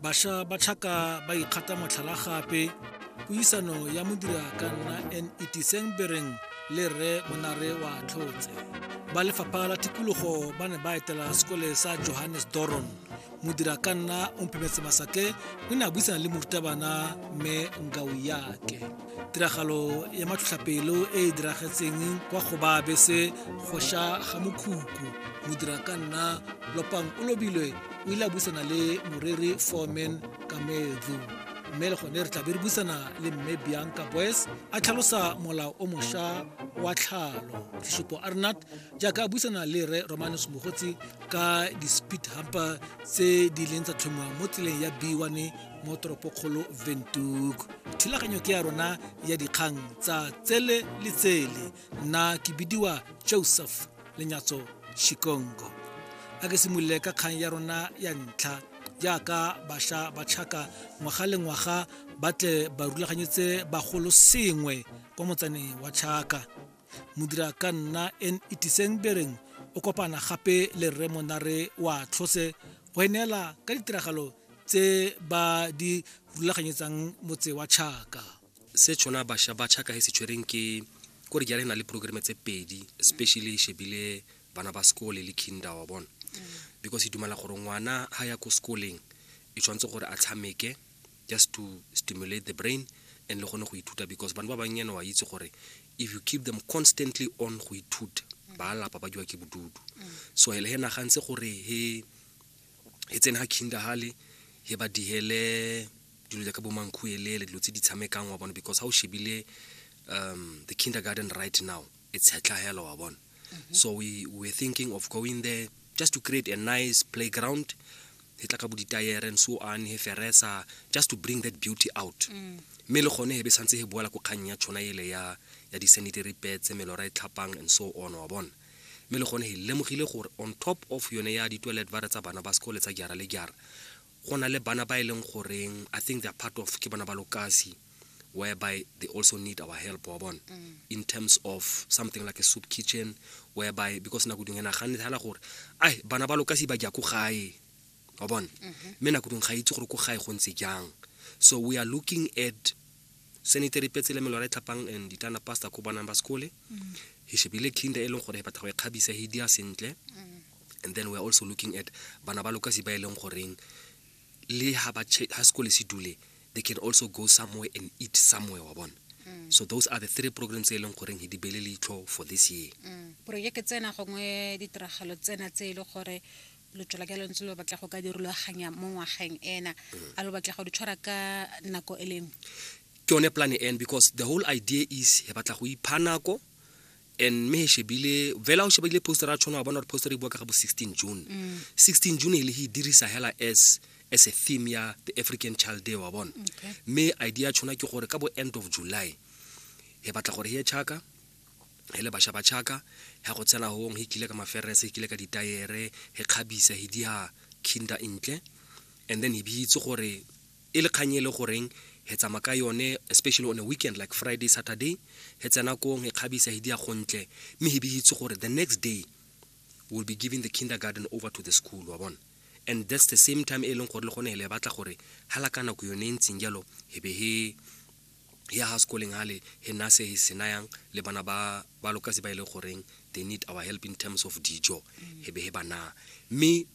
Basha ba Chaka ba ikgata motlhala gape puisano ya modira ka nna NET Sengbereng le Rre Monare wa Tlhotse. Ba lefapha la tikologo ba ne ba etela sekole sa Johannes Doron. Modira ka nna o mpemetse masake o ne a buisana le morutabana mme Ngau yake. tiragalo ya matlhotlhapelo e e diragetseng kwa go ba bese go sha ga mokhukhu modira ka nna lopang o lobilwe o ile a buisana le moreri foreman kamedzo mme le gone re tla be re buisana le mme bianca boys a tlhalosa molao o mošwa wa tlhalo tlishopo arnat jaaka a buisana le re romanus mogotsi ka di-speed humper tse di leng tsa tlhomiwa mo tseleng ya b1 mo toropokgolo ventuk thulaganyo ke ya rona ya dikgang tsa tsele le tsele nna ke bidiwa joseph lenyatso shikongo a ke simolole ka kgang ya rona ya ntlha jaaka bašwa ba tšhaka ngwaga le ngwaga ba tle ba rulaganyetse bagolo sengwe kwa motsaneng wa tšhaka modira ka nna en itiseng bereng o kopana gape le rre monare wa tlhose go e neela ka ditiragalo tse ba di rulaganyetsang motse wa chaka se tshwana basha ba chaka he se tshwereng ke kore jale na le programme tse pedi especially shebile bana ba sekole le kinder wa bona because e dumela gore ngwana ha ya ko sekoleng e tshwanetse gore a tshameke just to stimulate the brain and le gone go ithuta because bana ba bannyane wa itse gore if you keep them constantly on go ithuta ba lapa ba diwa ke bodudu so le he nagantse gore he e tsene ga kinda hale he ba dihele dilo jaaka bo mankhuelele dilo tse di tshamekang wa bona because ha o shebile um, the kindergarten right now it's hetlahelo wa bona mm -hmm. so we were thinking of going there just to create a nice playground he tla ka bo ditayere and so on he feresa just to bring that beauty out mm. mme le gone he be santse he boela ko kgang ya tshwana ele ya ya di-sanitary pads melora e tlhapang and so on wa bona Mme le gone he lemogile gore on top of yone ya ditoilet vare tsa bana ba sekole tsa jara le jara, go na le bana ba e leng goreng I think they are part of ke bana ba lokasi whereby they also need our help wa bona mm. in terms of something like a soup kitchen whereby because nako dingwe naganne thela gore ai bana ba lokasi ba ja ko gae wa bona mm-hmm. mme nako dingwe ga itse gore ko gae go ntse jang so we are looking at Senator Petsele Melora Tlhapang and Ditana Pastor Khubana Mbaskole. Mm. He should be le kinda e leng gore he batla go e kgabisa he dia sentle. Mm. And then we are also looking at bana ba lokasi ba e leng goreng le ha ba ha sekole se dule they can also go somewhere and eat somewhere wa bona. Mm. So those are the three programs e leng goreng he di bele leitlho for this year. Mm. Project tsena gongwe ditiragalo tsena tse e le gore lotshola ka lontse lo batla go ka dirulaganya mo ngwageng ena a lo batla go di tshwara ka nako e lengwe ke yone plan n because the whole idea is he batla go ipha nako and me he shebile fela o shebile poster a tshwana wa bona gore poster e bua ka ga bo 16 june mm. 16 june e le he dirisa hela as as a theme ya the african child day wa bona okay. me idea tshwana ke gore ka bo end of july he batla gore he chaka he le basha ba chaka ya go tsena hong he kile ka maferese he kile ka ditayere he kgabisa he dia kinda intle and then he bitse gore e le kganye e le goreng he tsama ka yone especially on a weekend like friday saturday he tsena kong he kgabisa he dia gontle mme he bitse gore the next day will be giving the kindergarten over to the school wa bona and that's the same time e leng gore le gone le batla gore ha la ka nako yone e ntseng jalo he be he ya ga sekoleng gale he nna se se nayang le bana ba ba lokasi ba e le goreng they need our help in terms of dijo he be he ba naa mme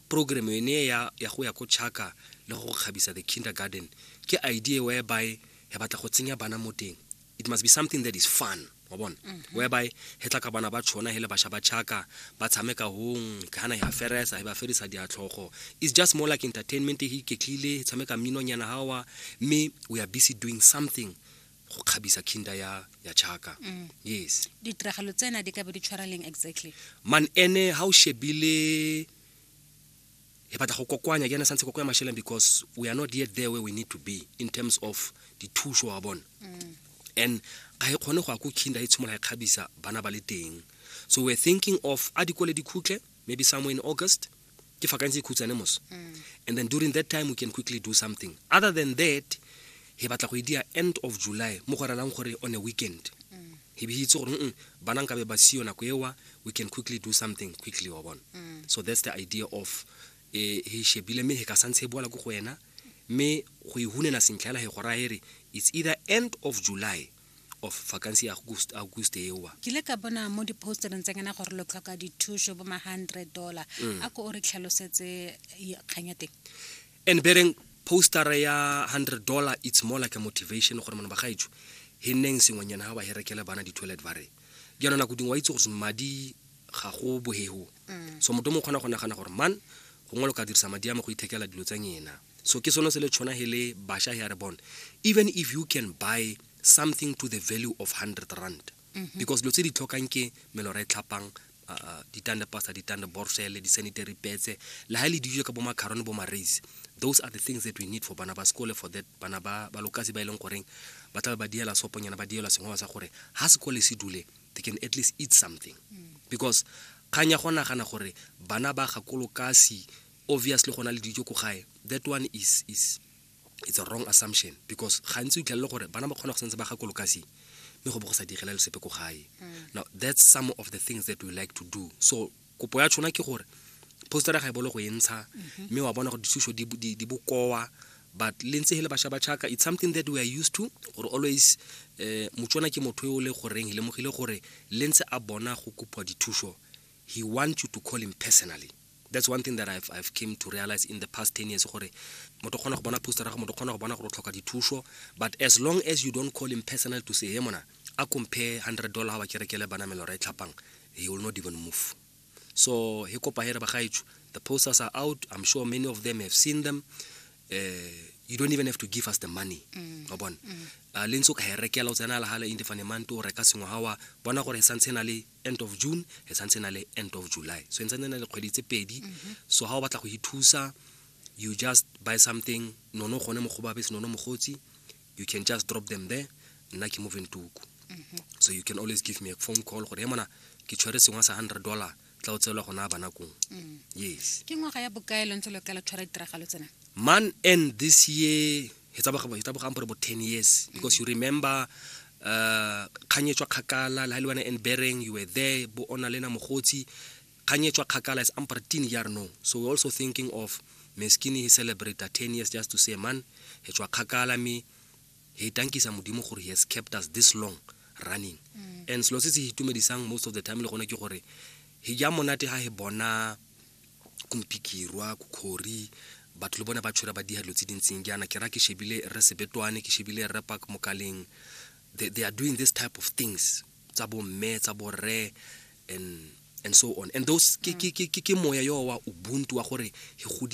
program yone ya ya go ya ko chaka le go kgabisa the kindergarten ke idea whereby he batla go tsenya bana mo teng it must be something that is fun wa bona mhm. whereby he tla ka bana ba tshona he le basha ba chaka ba tshameka hong ha na ya feresa he ba ferisa diatlhogo it's just more like entertainment he iketlile he tshameka mmino nyana hawa mme we are busy doing something go kgabisa kinda ya ya chaka mm. yes ditiragalo tsena di ka be di tshwareleng exactly man ene ha o shebile e batla go kokoanya ke ene santse kokoa masheleng because we are not yet there where we need to be in terms of dithuso wa bona mm. and ga e kgone go ya ko kinda e tshimolola e kgabisa bana ba le teng so we're thinking of a dikole dikhutle maybe somewhere in august ke fakantse e khutshane moso mm. and then during that time we can quickly do something other than that he batla go e dia end of july mo go relang gore on a weekend mm. he be itse gore mm bana nkabe ba siyo nako ewa we can quickly do something quickly wa bona mm. so that's the idea of eh, he shebile me he ka santshe e boala ko go wena me go e hunena sentlha ela he go raya ere it's either end of july of vacancy ya august august ewa ke le ka bona mo di-postereng tsa ngena gore lo tlhoka dithuso bo ma hundred dollar mm. a ko o re tlhalosetse kganya teng and bereng poster ya 100 dollar it's more like a motivation gore mona ba gaetsho he neng sengwenyana ha ba herekele bana di toilet ba re jaanong nako dingwe wa itse gore madi ga go bohego mm. so moto mo kgona go nagana gore man gongwe lo ka dirisa madi a me go ithekela dilo tsa nyena so ke sone se le tshwana he le basha he a re bone even if you can buy something to the value of 100 rand mhm. because dilo tse di tlhokang ke melora e tlhapang uh, ditande pasta ditande borsele di-sanitary petse le ga e le dijo ka bo macarone bo maraise those are the things that we need for bana ba sekole for that bana ba balokasi ba e leng goreng ba tlabe ba diela soponyana ba dielwa sengwe sa gore ga sekole se dule they can at least eat something mm. because kgang ya go nagana gore bana ba gakolokasi obviously go na le dijo ko gae that one is, is it's a wrong assumption because gantsi o itlhelele gore bana ba kgona go santse ba ga kolokasi mme go bo go sa direla le sepe ko gae mm. now that's some of the things that we like to do so kopo ya tshona ke gore postera ga e bolo go e ntsha mm-hmm. mme wa bona gore dithuso di bokoa but le ntse hele basha ba chaka it's something that we are used to gore always eh motswana ke motho yo le goreng le mogile gore le ntse a bona go kopa dithuso he want you to call him personally that's one thing that I've, I've came to realize in the past 10 years gore motho kgona go bona poster ga motho kgona go bona gore o tlhoka dithuso but as long as you don't call him personal to say hey mona a compare 100 dollar ga ba kerekele bana melora e tlhapang he will not even move so he kopa here ba gaetsho the posters are out i'm sure many of them have seen them uh, you don't even have to give us the money mm. wa bona mm. uh, le ntse o ka e rekela o tsena la gala indefane mante o reka sengwe gawa bona gore e santse e na le end of june e santse na le end of july so e ntsantse na le kgwedi tse pedi mhm. so ga o batla go ithusa you just buy something nono gone mo go babese nono mogotsi you can just drop them there nna ke moving tuku mhm. so you can always give me a phone call gore e mona ke tshwere sengwe sa hundred dollar tla o tseelwa gona ba nakong mm. yes ke ngwaga ya bokae lo ntse lo kala tshwara ditiragalo tsena man and this year e tsabogang gore bo ten years because you remember uh kgang e tswa kgakala le ha le wena and bereng you were there bo ona lena mogotsi kgang e tswa kgakala is amper teen year no so we're also thinking of meskini he celebrate the 10 years just to say man he tswa kgakala me he tankisa modimo gore he has kept us this long running mm. and selo se se itumedisang most of the time le gone ke gore he ja monate ha he bona kumpikirwa kukhori batho le bone ba tshwere ba diha dilo tse dintseng jaana ke ra ke shebile re sebetwane ke shebile re park mokaleng they, they are doing this type of things tsa bo mme tsa bo rre and and so on and those ke ke ke ke moya yo wa ubuntu wa gore he godile